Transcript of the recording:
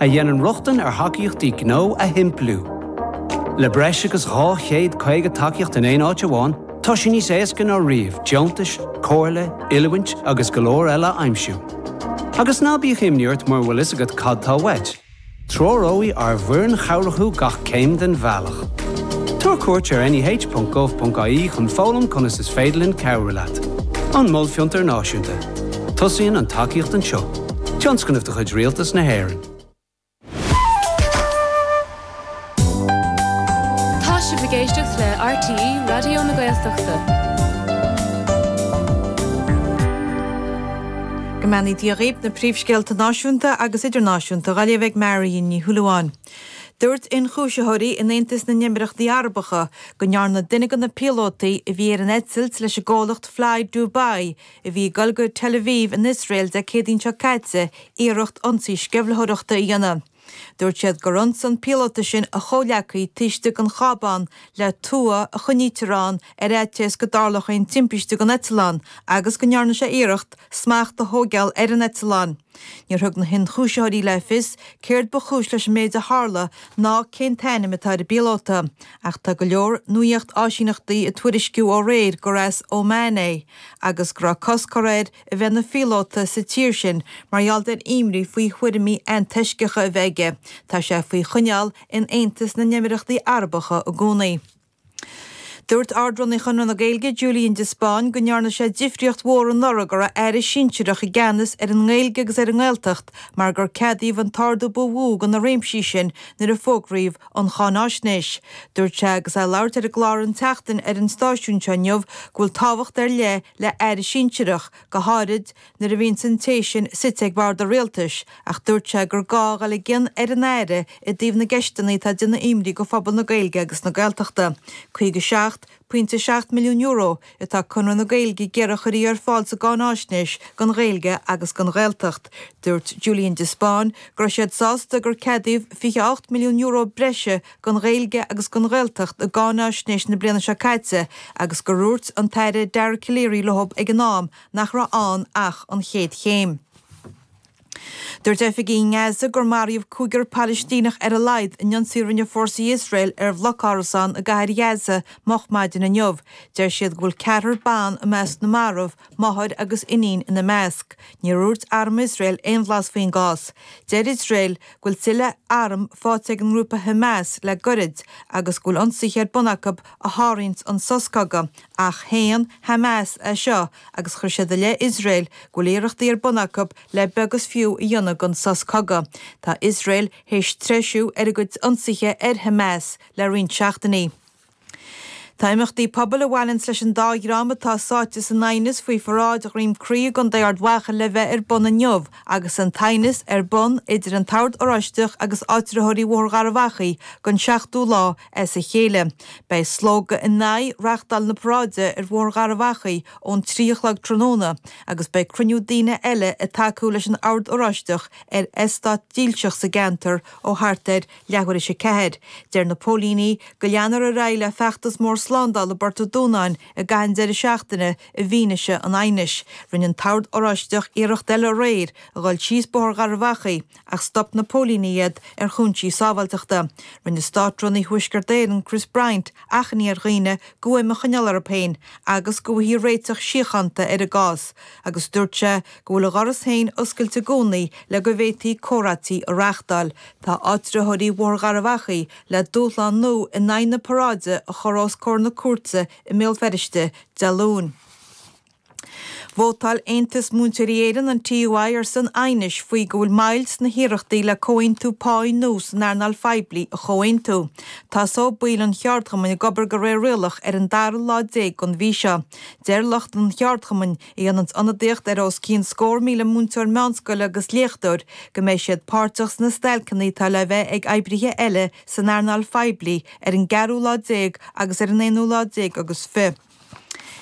a dhéanann rochtain ar thacaíochtaí gnó a shimpliú. Le breis agus 250 tacaíocht in aon áit amháin, tá sé níos éasca ná riamh deontais, comhairle, oiliúint agus go leor eile a aimsiú. Agus ná bíodh imní ort mura bhfuil a fhios agat cad atá uait, treoróidh ár bhfoireann chabhrach thú gach céim den bhealach. Tabhair cuairt ar neh.gov.ie chun foghlaim conas is féidir linn cabhrú leat. An Mol Fiontar Náisiúnta. Tosaíonn an tacaíocht anseo. Tionscnamh de chuid Rialtas na hÉireann. Tá sibh ag éisteacht le RTÉ Raidió na Gaeltachta. Go mbeannaí Dia dhaoib na príomhscéalta náisiúnta agus idirnáisiúnta dhá léamh ag Marion Ní Shúilleabháin. Dúirt ionchúisitheoirí in Aontas na nÉimíríochtaí Arabacha go ndearna duine de na píolótaí a bhí ar an eitilt leis an gcomhlacht Fly Dubai a bhí ag dul go Tel Aviv in Iosrael Dé Céadaoin seo caite iarracht ionsaí sceimhlitheoireachta a dhéanamh. Dúirt siad gur ionsaigh an píolóta sin a chomhghleacaí taobh istigh den chábán le tua a choinnítear ann ar fhaitíos go dtarlódh aon timpiste don eitleán agus go ndearna sé iarracht smacht a thógáil ar an eitleán. Níor thug na hionchúisitheoirí le fios céard ba chúis leis an méid a tharla ná cén t-ainm atá ar an bpíolóta ach tá go leor nuacht-áisíneachtaí ag tuairisciú ó aréir gur as Óman é agus go raibh cosc curtha air a bheith ina phíolóta sa tír sin mar gheall ar imní faoi thuairimí antoisceacha a bheith aige, tá sé faoi choinneáil in Aontas na nÉimíríochtaí Arabacha i gcónaí. Dúirt Ard-Runaí Chonradh na Gaeilge, Julian de Spáinn, go ndearna sé difríocht mhór anuraidh go raibh Aire sinsearach i gceannas ar an nGaeilge agus ar an nGaeltacht mar gur ceadaíodh an t-ardú ba mhó do na réimsí sin nuair a fógraíodh an cháinaisnéis. Dúirt sé agus é ag labhairt ar an gclár An tSeachtain ar an stáisiún seo inniu go bhfuil tábhacht ar leith le Aire Sinsearach, go háirid nuair a bhíonn an té sin suite ag Bord an Rialtais, ach dúirt sé gur gá a dhul i gcion ar an Aire i dtaobh na gceisteanna atá ag déanamh imní do phobal na Gaeilge agus na Gaeltachta. 57. Pointe €7 milliún atá Conradh na Gaeilge ag iarraidh a chuirfí ar fáil sa gcáinaisnéis don Ghaeilge agus don Ghaeltacht. Dúirt Julian de Spáinn go raibh siad sásta gur ceadaíodh €28 milliún breise don Ghaeilge agus don Ghaeltacht i gcáinaisnéis na bliana seo caite agus gur dhúirt an tAire Dara Calleary leo ag an am nach raibh ann ach an chéad chéim. Dúirt oifigigh i nGaza gur maraíodh cúigear Palaistíneach ar a laghad in ionsaí a rinne fórsaí Iosrael ar bhloc árasán i gCathair Ghaza moch maidin inniu. Deir siad go bhfuil ceathrar ban i measc na marbh, máthair agus iníon ina measc. Níor dhúirt arm Iosrael aon bhlas faoin gcás. Deir Iosrael go bhfuil tuilleadh arm faighte ag an ngrúpa Hamas le goirid agus go bhfuil ionsaithe ar bun acu a shárú an sos cogaidh. Ach shéan Hamas é seo agus chuir siad i leith Iosrael go bhfuil iarrachtaí ar bun acu le beag is fiú a dhéanamh den sos cogaidh. Tá Iosrael thar éis treisiú ar a gcuid ionsaithe ar Hamas le roinnt seachtainí. Tá imeachtaí pobail a bhaineanns leis an dá dhream atá sáite san aighneas faoi pharáid Dhroim Cria i gContae Ard Mhacha le bheith ar bun inniu agus an t-aighneas ar bun idir an Ord Oráisteach agus áitritheoirí Bhóthar Gharbhachaidh don seachtú lá as a chéile. Beidh slógadh in aghaidh reachtáil na paráide ar Bhóthar Gharbh Achaidh ón trí a chlog tráthnóna agus beidh cruinniú daoine eile ag tacú leis an Ord Oráisteach ar eastát dílseach sa gceantar ó thart ar leathuair théis a ceathair. Deir na póilíní go leanfar ar aghaidh le feachtas mór slándála i bPort an Dúnáin i gcaitheamh an deireadh seachtaine i bhfianaise an aighnis. Rinne an tOrd Oráisteach iarracht eile aréir a dhul síos Bóthar Gharbh Achaidh, ach stop na póilíní iad ar chúinsí sábháilteachta. Rinne Státrúnaí Thuaisceart Éireann, Chris Bryant, achainí ar dhaoine guaim a choinneáil orthu féin agus go bhfaighfí réiteach síochánta ar an gcás agus dúirt sé go bhfuil a dhoras féin oscailte i gcónaí le go bhféadfaí comhráití a reachtáil. Tá áitritheoirí Bhóthar Gharbh Achaidh le dúshlán nua in aghaidh na paráide a chur os comhair na cúirte i mBéal Feirste Dé Luain. Vótáil Aontas Múinteoirí Éireann, an TUI, ar son aighnis faoi rá is go bhfuil moill sna hiarrachtaí le comhaontú páí nua san earnáil phoiblí a chomhaontú. Tosóidh baill an cheardchumainn ag obair go réir rialach ar an dara lá déag den mhí seo. Deir lucht an cheardchumainn, a dhéananns ionadaíocht ar os cionn scór míle múinteoir meánscoile agus léachtóir, go mbeidh siad páirteach sna stailceanna atá le bheith ag oibrithe eile san earnáil phoiblí ar an gceathrú lá déag agus ar an aonú lá déag agus fi.